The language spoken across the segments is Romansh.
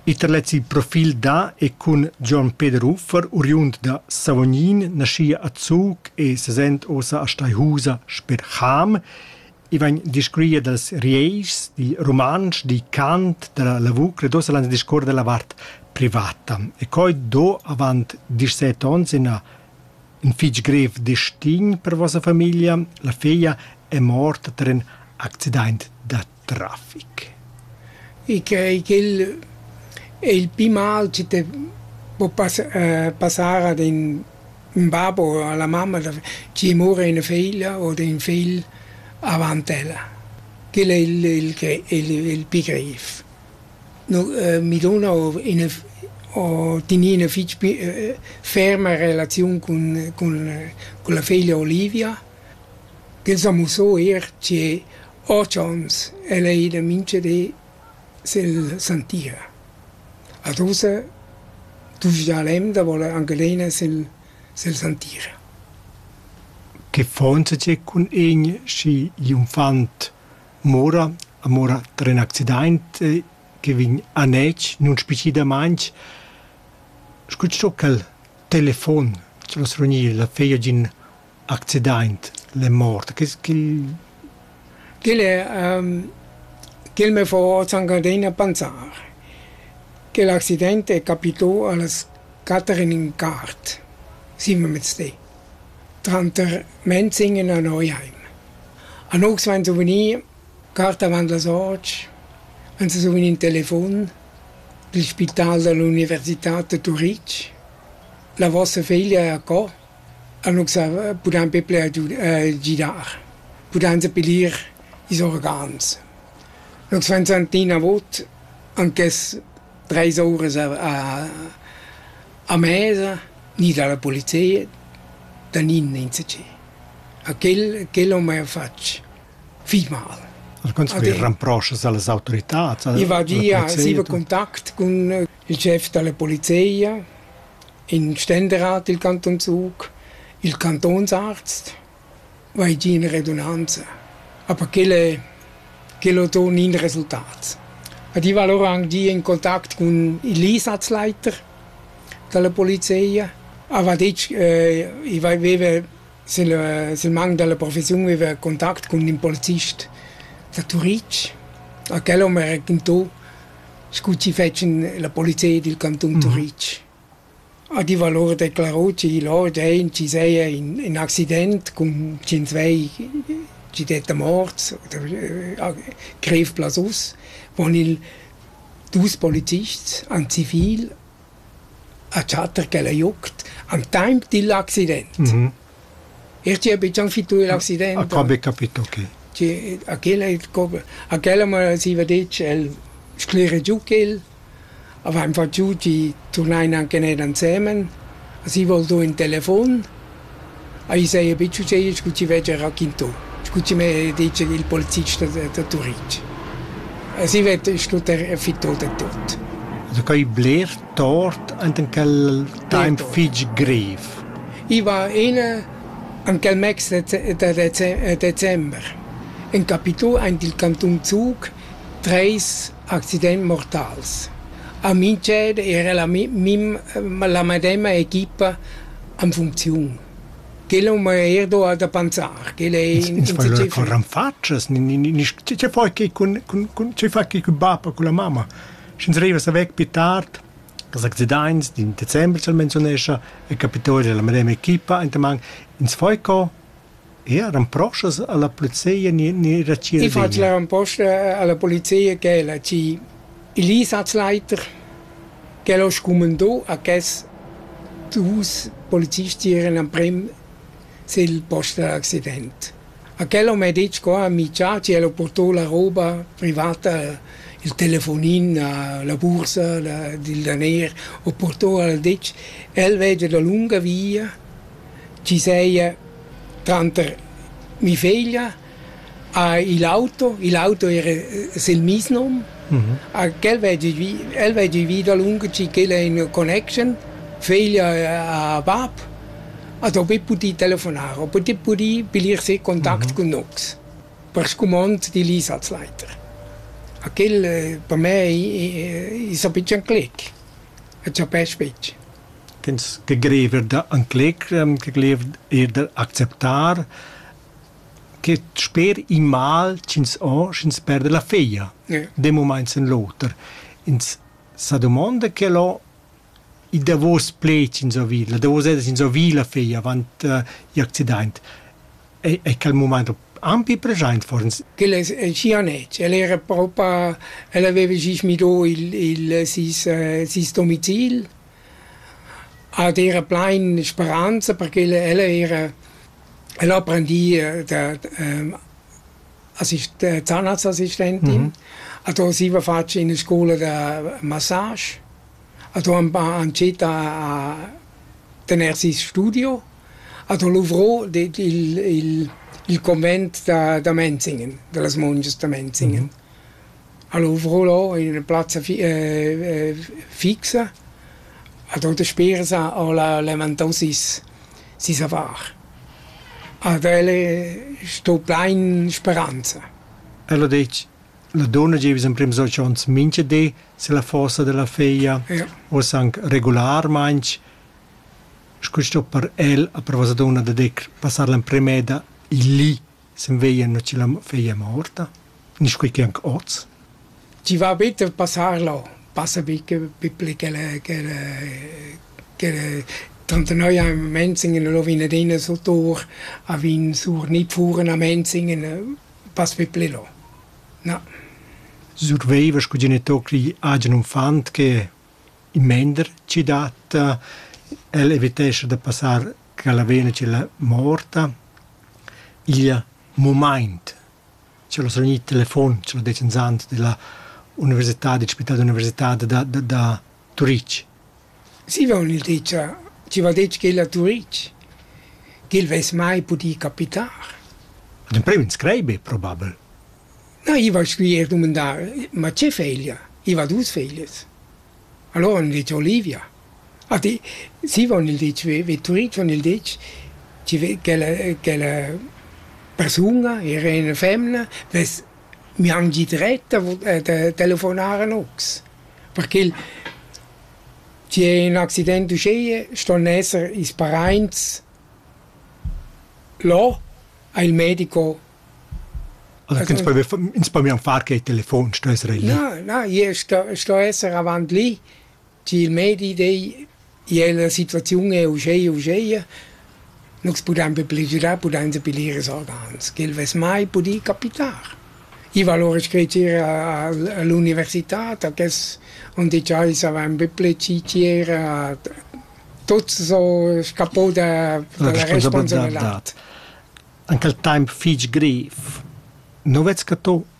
Iter lez il profil da e cun Gion Peder Uffer, uriund da Savognin, naschia a Zug e sesent ossa a Steihusa sper Cham. I vegn discurria dals Rieischs, dil rumantsch, dil cant, dalla lavur ed ossa lans discuor dalla vart privata. E coi do avant disset onns ina in fitg grev destin per vossa famiglia. La feglia è morta tar in accident da trafic. E quei ch'el è il pli mal chi te po pas- passar ad ün ün bab o a la mamma da chi mura üna figlia o d'ün figl avant ella. Quel è il il gre- il il pi greiv. No mi duna o üna o teni üna fich pi ferma relaziun cun cun la figlia Olivia, ch'el s'a musso eir che Otschans el ei ida mintga di silla santia. Ad ussa duschda l'emda vola anc adina sil silla santia. Che faunsa tgei cun in schi gl'unfant mora, a mora tra in accidaint che vegn anetg nunspecidamaintg, scu sto quel telefon, ch'el as rognir la feia d'in accidaint le mort? Che quel quel me fo s'han adina panzar. Quel accident è capitù a las quatter e ün quart, sievenmezdi, tranter Menzing e Nanojaim. A nous vain su vgnì cart avant las otg, vain su vgnì ün telefon del spital da l'università da Turitg. La vossa figlia è a co? Annunz pudain be bler gidar, pudain sepilir ils organs. Nus vain sentì inavot ant quest treis ouras a a mesa ni dalla polizia da nin insatgè. A quel quel ho mia fatg fich mal. Al contrari, ramproschas a las autoritats? I va gia, siva contact cun il schef dalla polizia, in Ständerat dil Canton Zug, il Cantonsarzt, va ei giu ina redunanza. Aber quel è, quel ho ton in resultat. Ed io val ora anc gì in contact cun il Einsatzleiter dalla polizia. Aveva detg, eh, ich aveva sul, sul manco della professione aveva contatto con un polizist da Turitg. A quel ho mi raccontato scu chi fetschan la polizia dil cantun mhm. Turitg. Ha di valor declarò chi lor dein chi seia in, in accident cun cin svei ci detta morts oder äh, greif blas us, von il dus polizists an zivil a Chatter ch'el ei uct al temps digl accident. Mh. El chi ha bigian fittu igl accident. Ha qua be capito, okay. Chi a quel ei a quella m'ha siva detg el sclera giu quel, avain fat giu chi turnain anche ner ansemen, a si vol do ün telefon Ei saja buc succedius scu chi veggia raquintà, scu chi m'ha detg il polizist da da Turitg. Asi vett schluttar fittà da tot. Also quai bler tort ant en quel taimp fitg grev. I va ina en quel mecs da december. En capitù aint il cantun Zug treis accidents mortals. A Mintsched era la mi- mim la medema equipa en funcziun. Quella ma er do da pensar, quella è iniciativa. Con ranfatschas, ci fa che con con ci fa che con bapa con la mamma. Sch'ins arriva sa weg più tard, das Accidents, in Dezember soll menzonescha, e capitoli della medem equipa, intamang ins foi co Eir impostas a la polizia ne era ci I fat la imposta a la polizia ch'el ha ci il einsatzleiter ch'el ho scumandà a ches dus polizisti eran amprem sel post da l'accident. A quel ho mê detg co ha minchà chi el ho purtà la roba privata, il telefonin a la bursa dil daner, ho purtà al detg: «El vegia dalunga via, chi seia tranter mi feglia ha il auto, il auto era sel meis nom, a quel vedi vi, el vedi vi dalunga chi ch'el è in connection, feglia ha bab, a do pudì pudì telefonar, o pudì pudì pilir se contact cun nox per scumond d'il is als leiter. A quel per me i i s'ha pitschen clic, e chapesc betg. ch'ins che greiva da encleger, che greiva eir da acceptar che sper il mal ch'ins ho, sch'ins perda la feglia d'un mumaint in l'oter. Ins sa dumonda che lo il davos pled ch'ins ho vid, la davos ed ch'ins ho vid la feglia avant i accidaint. è, è quel mument ampi present for uns. Quel es el chianec, el era propa, el aveva sis midò il, il sis, eh, sis domicil, ed era plain speranza perché el, el era, el apprendì eh, da, da, ehm, assist, Zahnarztassistentin, mm -hmm. e da siva fatg in scola da massage A do ün pa ancietta a tener seis studio, a do luvrò il il il convent da da Menzingen, da las mungias da Menzingen. A luvrò lò in üna plazza fixa, a do dasperas ho la levantà seis seis affar. Ad el sto plain speranza. El ho detg: La dunna gieva in prem sols onns mincha di silla fossa dalla feglia, Ia. uossa anc regularmaing, scu sto per el a per vossa dunna da dir passar l'emprem'eda lì sin veglia no chi la feglia è morta, nisch quai che anche hoz. Chi va bit a passar là, passa bi che pippli ch'el ch'el ch'el trentanoi a Menzingen e lo vin adina sur tur, a vin sur Nidfuhren a Menzingen Pas pü pli là. Na. Surveiva scu genitocri agen uffant che in mender chi dat. El evitescha da passar ch'ella vegna ch'ella morta. Il mumaint ch'el ho svanì il telefon, ch'el ho det insand della università, dil spital d'università da da da Turitg. Ziva ho gnü dit cha zieva detg ch'el a Turitg ch'el vess mai pudì capitar. Ün emprim inscret be probabel. Na, i va scu eir dumandar, ma che feglia? I va duos feglias. Alura han dit Olivia. A di, zieva han el dit ve ve Turitg han el ditg chi ve ch'ella ch'ella persuna era üna femna vess Mi han gi dret da da telefonar a nus, perché tg'é ün accident uschea ston esser ils paraints là a il medico. Ins po mian far che il telefon sto esser el li. Na, na, io sto sto esser avant li Chi il medi dei ier la situaziun è uscheia uscheia, nus pudain be pligiurar, pudain be lir ils organs, ch'el vess mai pudì capitar. I va lura screcer a l'università, da quels on digià i savain be ple citier a tuots so scapò da la responsabilità. Anch'l taimp fich griv. Nu vez che to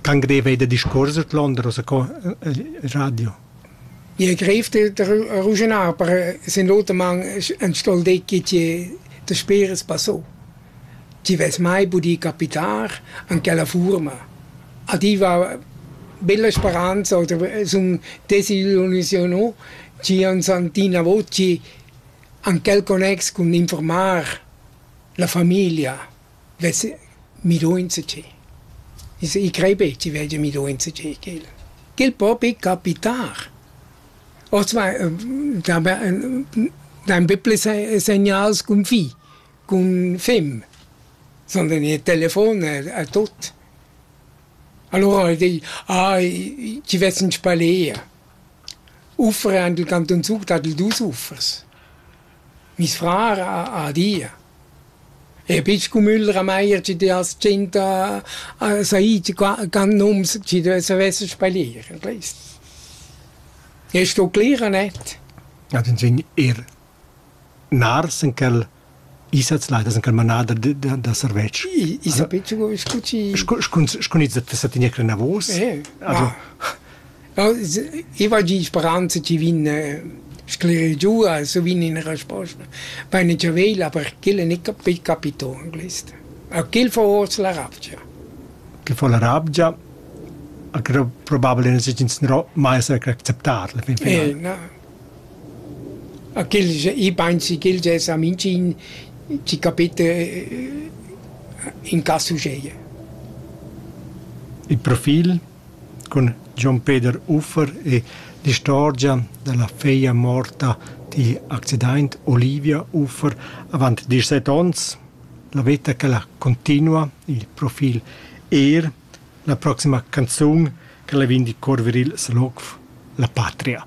Cangrev ei da discuors ordlunder ussa co il radio. Je grev da ruginar, per sin l'oter man en stol decki ti da speres passò. Ti ves mai budì capitar an quella furma. A ti va bella speranza oder sun desillusionò ci an santina voci an quel connex cun informar la familia. vess miduonza tgi. I sej, i crei be chi veglia miduonza tgi ch'el. Ch'el po be capitar. Hoz va dain be pli segnals cun fi, cun fem. Sun vegni il telefon a tuot. Alura el di: Ah, chi vess in spalea. Ufferi ant il cantun Zug, dat el dus uffers. Miss frar ha ha adia. E pign scumüller a Maier chi dess tschinta a said qua can nums chi savess spalir al ais. E sto clera net. Ad ins vegn eir nars in quel Isazleit, as in quel manader da da da servetsch. Isa pitschen scu chi... Scu scu scu gnits da sa tigner clinavos. Also I vagin speranza chi vegn sclerir giù, also vegn üna resposta vaina già veglia, aber ch'el è gnü capì capitò in quist. A ch'el fa hoz la ravgia. Ch'el fa la ravgia, a ch'el probabel in segins gnarò mai s'ha acceptar la fin finala. Eh, na. A ch'el i pensi ch'el già sa mincin ci capite in caso seie. Il profil cun Jon Peder Uffer e l'istorgia dalla feglia morta digl accidaint Olivia Uffer avant dieschset ons. La veta ch'ella cuntinua, il profil eir, la proxima canzun ch'ella vegn dir Corviril Selof, La patria.